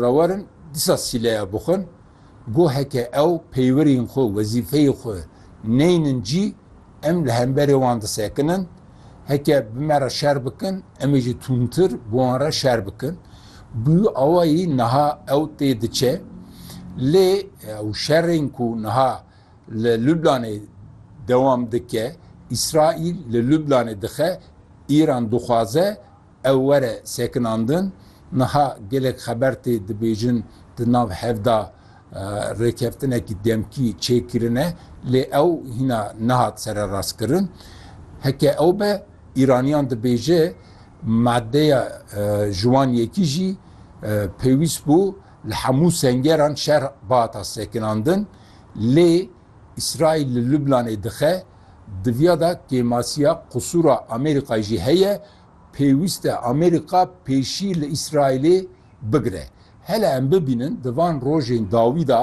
Rawerin dîsa sîleya bixwin. Go heke ew peywerên xwe, wezîfeyê xwe neynin cî, em li hemberê wan disekinin. Heke bi me re şer bikin, em ê jî tûntir bi wan re şer bikin. Bi wî awayî niha ew tê diçe. Lê ew şerên ku niha li Lublanê dewam dike, Îsraîl li Lublanê dixe, Îran dixwaze, Ew were sekinandin, niha gelek xeber tê dibêjin di nav hev de rêkeftinekî demkî çêkirine lê ew hîna nehat sererastkirin. Heke ew be, Îraniyan dibêje madeya ji wan yekî jî pêwîst bû li hemû sengeran şer bihata sekinandin lê Îsraîl li Lubnanê dixe diviya de kêmasiya qusûra Amerîkayê jî heye Pêwîst e Amerîka pêşî li Îsraîlê bigire. Hele em bibînin di van rojên dawî de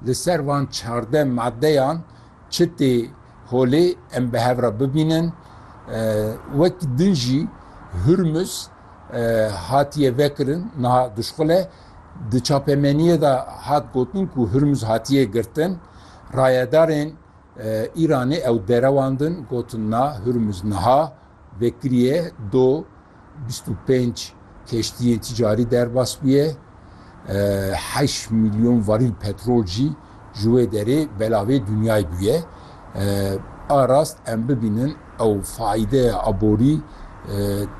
li ser van çardeh madeyan çi tê holê em bi hev re bibînin. Wek din jî Hurmuz hatiye vekirin niha duşxule. Di çapemeniyê de hat gotin ku Hurmuz hatiye girtin. Rayedarên Îranê ew derewandin gotin na Hurmuz niha vekiriye do bîst û pênc keştiyên ticarî derbas bûye, heşt milyon varîl petrol jî ji wê derê belavê dinyayê bûye. A rast em bibînin ew faîdeya aborî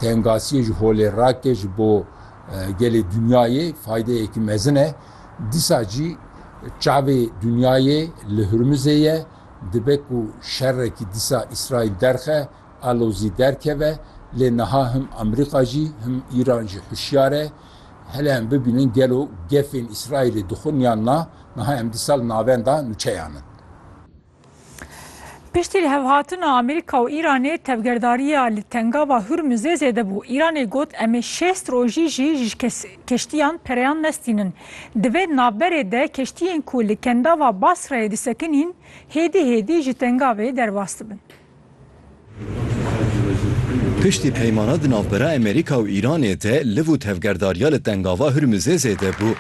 tengasiyê ji holê rake ji bo gelê dinyayê faîdeyekî mezin e. Dîsa jî çavê dinyayê li Hurmizê ye, dibe ku şerekî dîsa Îsraîl derxe, alozî derkeve, lê niha him Amerîka jî, him Îran jî hişyar e. Hele em bibînin gelo gefên Îsraîlê dixwin yan na, niha em dîsa li navenda nûçeyan in. Piştî lihevhatina Amerîka û Îranê tevgerdariya li tengava Hurmuzê zêde bû. Îranê got em ê şêst rojî jî ji keştiyan pereyan nestînin. Di vê navberê de keştiyên ku li kendava Basrayê disekinîn hêdî hêdî ji tengavê derbas dibin. Piştî peymana di navbera Emerîka û Îranê de liv û tevgerdariya li Tengava Hurmuzê zêde bû.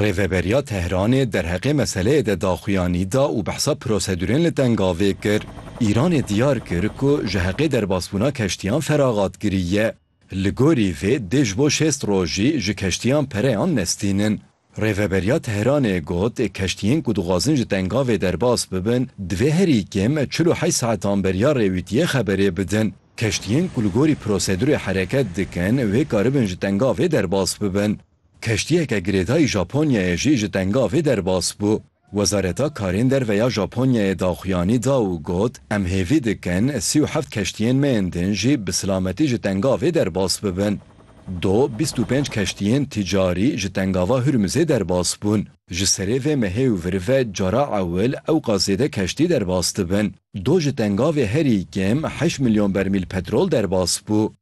Rêveberiya Tehranê derheqê meseleyê de daxuyanî da û behsa prosedûrên li Tengavê kir. Îranê diyar kir ku ji heqê derbasbûna keştiyan feraxat kiriye. Li gorî vê dê ji bo şêst rojî ji keştiyan pereyan nestînin. Rêveberiya Tehranê got keştiyên ku dixwazin ji tengavê derbas bibin divê herî kêm çil û heşt saetan beriya rêwîtiyê xeberê bidin. Keştiyên ku li gorî prosedurê hereket dikin wê karibin ji tengavê derbas bibin. Keştiyeke girêdayî Japonyayê jî ji tengavê derbas bû. Wezareta Karên Derve ya Japonyayê daxuyanî da û got, Em hêvî dikin sî û heft keştiyên me yên din jî bi silametî ji tengavê derbas bibin. Do bîst û pênc keştiyên tîcarî ji tengava Hurmuzê derbas bûn. Ji serê vê mehê û vir ve cara ewil ewqas zêde keştî derbas dibin. Do ji tengavê herî kêm heşt milyon bermîl petrol derbas bû.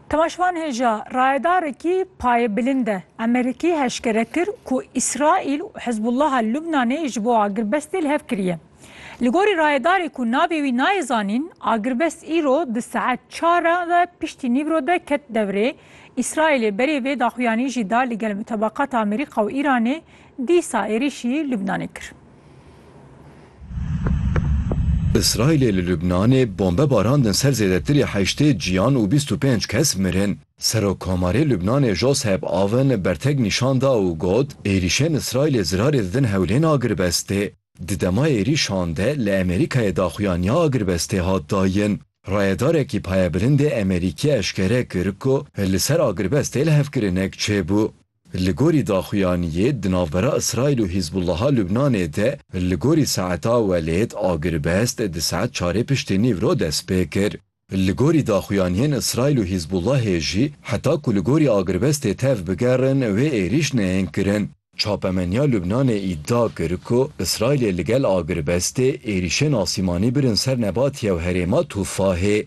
Timaşvan hêja rayedarekî payê bilind e. Amerîkî heşkere kir ku Îsraîl û Hizbullaha Lubnanê ji bo agirbestê li hev kiriye. Li gorî rayedarê ku navê wî nayê zanîn, agirbest îro di saet çar re ve piştî nîvro de ket devrê. Îsraîlê berê vê daxuyanî jî da li gel mutabakat Amerîka û Îranê dîsa êrîşî Lubnanê kir. Îsraîlê li Lubnanê bombe barandin ser zêdetirî heştê ciyan û bîst û pênc kes mirin. Serokkomarê Lubnanê Josep Aoun bertek nîşan da û got, Êrîşên Îsraîlê zirarê didin hewlên agirvestê. Di dema êrîşan de li Amerîkayê daxuyaniya agirvestê hat dayin. Rayedarekî payebilindê Amerîkî eşkere kir ku li ser agirvestê lihevkirinek çêbû. Li gorî daxuyaniyê di navbera Îsraîl û Hîzbûllaha Lubnanê de li gorî saeta welêt agiribest di saet çarê piştî nîv re dest pê kir. Li gorî daxuyaniyên Îsraîl û Hîzbûllahê jî heta ku li gorî agiribestê tev bigerin wê êrîş neyên kirin. Çapemeniya Lubnanê îdia kir ku Îsraîlê li gel agiribestê êrîşên asîmanî birin ser nebatiya herêma Tûfahê.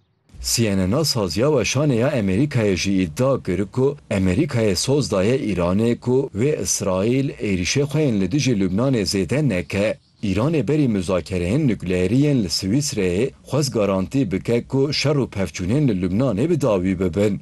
CNN'a saziya weşanê ya Amerîkayê jî îdia kir ku Amerîkayê soz daye Îranê ku wê Îsraîl êrîşê xwe yên li dijî Lubnanê zêde neke. Îranê berî muzakereyên nukleerî yên li Swîsreyê xwest garantî bike ku şer û pevçûnên li Lubnanê bi dawî bibin.